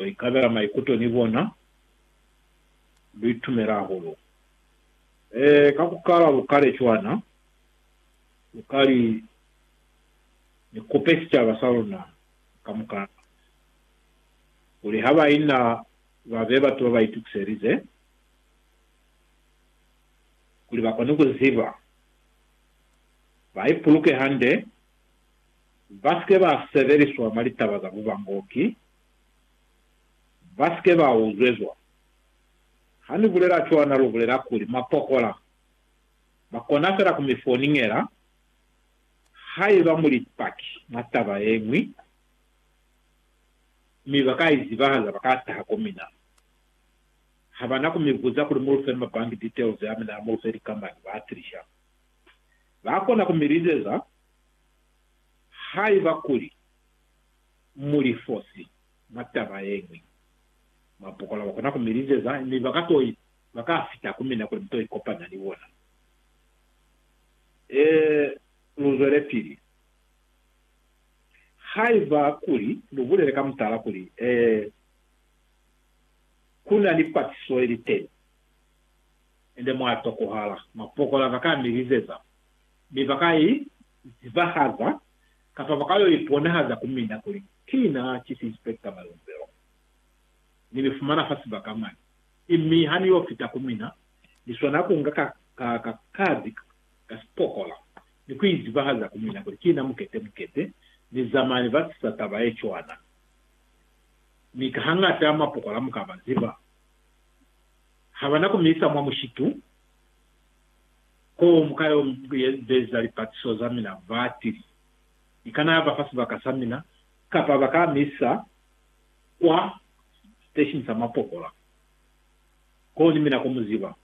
Lu ikabela maikuto ni bona. Lu itumela hahulu. Ee, ka ku kala lu kale cwana, lu ka li, Ni kupe sicaba sa luna kamukana, kuli ha baina ba be batu ba ba itukiselize, kuli ba kone ku ziba, ba ipuluke hande, ba si ke ba sebeliswa mwa litaba za bubangoki, ba si ke ba uzwezwa. Ha ni bulela cwana lu bulela kuli mwa pokola. Ba kona fela ku mi foningela haiba mu li Paki mwa taba ye ñwi, mi ba ka i zibahaza ba ka taha ko mina. Ha ba na ku mi buza kuli mu lu fe ma bank details a mina, mu lu fe likamani, ba tilisha. Ba kona ku mi lizeza haiba kuli. mu li fosi mwa taba ye ñwi. Mapokola ba kona ku mi lizeza, mi ba ka to ba ka fita ku mina kuli mi to ikopanya ni bona. Ee, lu zwelepili. Haiba kuli lu bulele ka mutala kuli, Ee, ku na ni patiso ye li teni, ende mwa tokohala, mapokola ba ka mi lizeza, mi ba ka i zibahaza kapa ba ka yo iponahaza ku mina kuli ki na ki sispekta malumbelo. Ni mi fumana fa sibaka mwani, mi ha ni yo fita ku mina, ni swana ku nga ka, ka, kadi ka sipokola ni ku izibahaza ku mina kuli ki na mukete, mukete, ni zamani ba sisa taba ye cwana. Mi ka hañata mapokola mu ka ba ziba, ha ba na ku mi isa mwa mushitu. Koo, muka yo beza lipatiso za mina ba tili? Ni kana ya ba fa sibaka sa mina, kapa ba ka mi isa kwa siteshini sa mapokola, koo ni mina ko mu ziba.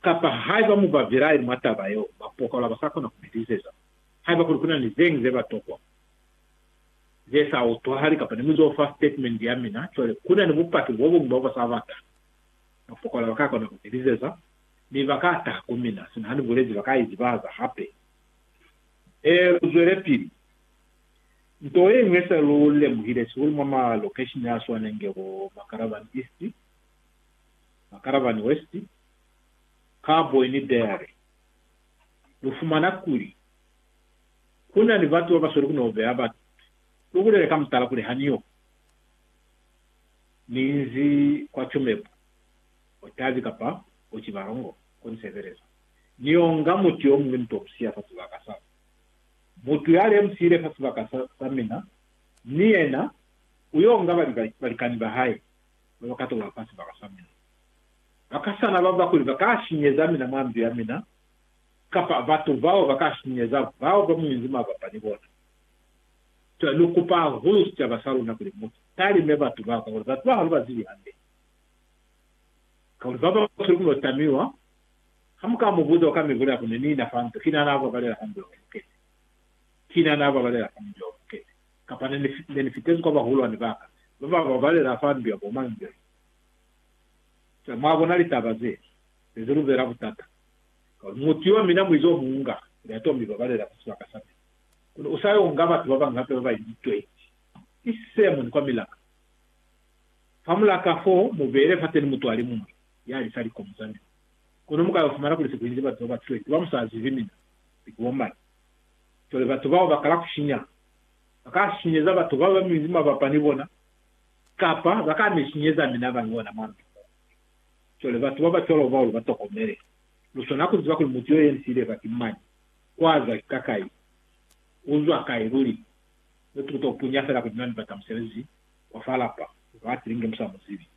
Kapa haiba mu ba bilaeli mwa taba yeo, mapokola ba sa kona ku mi liseza. Haiba kuli ku na ni zeñi ze ba tokwa, ze sa utwahali, kapa ni mu z'o fa sitatimende ya mina, cwale ku na ni bupaki bo buñwi bo ba sa bata. Ba fokola ba ka kona ku teliseza, mi ba ka taha ku mina. Sina ha ni bulezi ba ka izibahaza hape. Ee, lu zwelepili. Nto ye ñwi se lu lemuhile sihulu mwa malokeshini a swanenge bo Makaravani East, Makaravani West, Karboy ni Deary, lu fumana kuli, ku na ni batu ba ba sweli ku no beha batu. Lu bulele ka mutala kuli ha ni yo ku Minzi kwa Chumepu, Otavi kapa Ochibalongo ko ni sebeleza. Ni onga mutu yo muñwi ni to musiya fa sibaka sa ka. Mutu ya le musiile fa sibaka sa, sa mina, ni yena u yo nga bali ba, balikani ba hae ba ba ka tola fa sibaka sa mina. Ba ka sana ba ba kuli ba ka sinyeza mina mwa ndu ya mina, kapa batu bao ba ka sinyeza bao ba mu inzi mabapa ni bona. Cwale lu kupa hahulu sicaba sa luna kuli mu talime batu bao, kakuli batu bao ha lu ba zibi hande. Kakuli ba basweli ku lo tamiwa. Ha mu ka mu buza, u ka mi bulela kuli, Ni na fa nto, kina na babalela fa njo lukete. Kina na babalela fa njo lukete. Kapa ne ni, ne ni fitezi kwa bahulwani ba ka, ba ba babalela fa njo ya bo mañi jono. Cwale, mwa bona litaba ze, ne ze lu beela butata. Kakuli mutu yo mina muizi o mu nga, kuli a to mi babalela mwa sibaka sa mina. Kono u sa yo nga batu ba bañwi hape ba bainzi 20, ki se moni kwa milaka. Fa mulaka fo, mu beele fateni mutwali muñwi ya lisa likomo za mina. Kono mu ka yo fumana kuli se ku inzi batu ba ba 20 ba mu sa zibi mina ni ku bomani. Cwale batu bao ba kala ku shinya. Ba ka sinyeza batu ba ba minzi mabapa ni bona, kapa ba ka mi sinyeza mina ba li ona mwa ndu mo. Cwale batu ba ba cwalo bao lu ba tokomele. Lu swana ku ziba kuli mutu yo yenzile ba ki mañi. Kwaza ki kakai? Uzwa kai luli? Mutu uto punya fela kuli mina nibata musebezi wa fa lapa uto atile inge musa muzibi.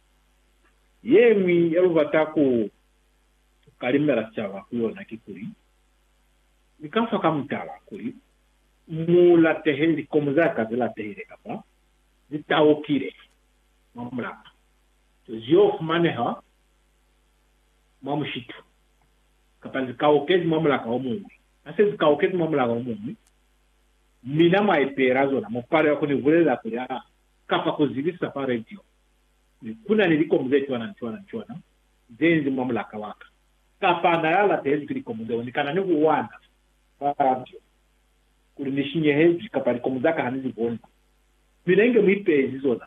Yeñwi yalubata ku kalimela sicaba ku yona kikuli, Ni ka fa ka mutala kuli mu latehe likomu za ka ze latehile kapa ze taukile mwa mulapa, zeo fumaneha mwa mushitu. kapa zi kaukezi mwa mulaka o muñwi. Ha se zi kaukezi mwa mulaka o muñwi, mi na mwa ipeela zona, mu palelwa ku ni bulelela kuli, Aa, kapa ku zibisa fa radio, kuli, Ku na ni likomu ze cwana ni cwana ni cwana ze inzi mwa mulaka wa ka. Kapa na la latehezwi ki likomu zeo, ni kana ni ku wana fa radio kuli ni shinyehezwi, kapa likomu za ka ha ni li boni. Mina inge mu ipeezi zona.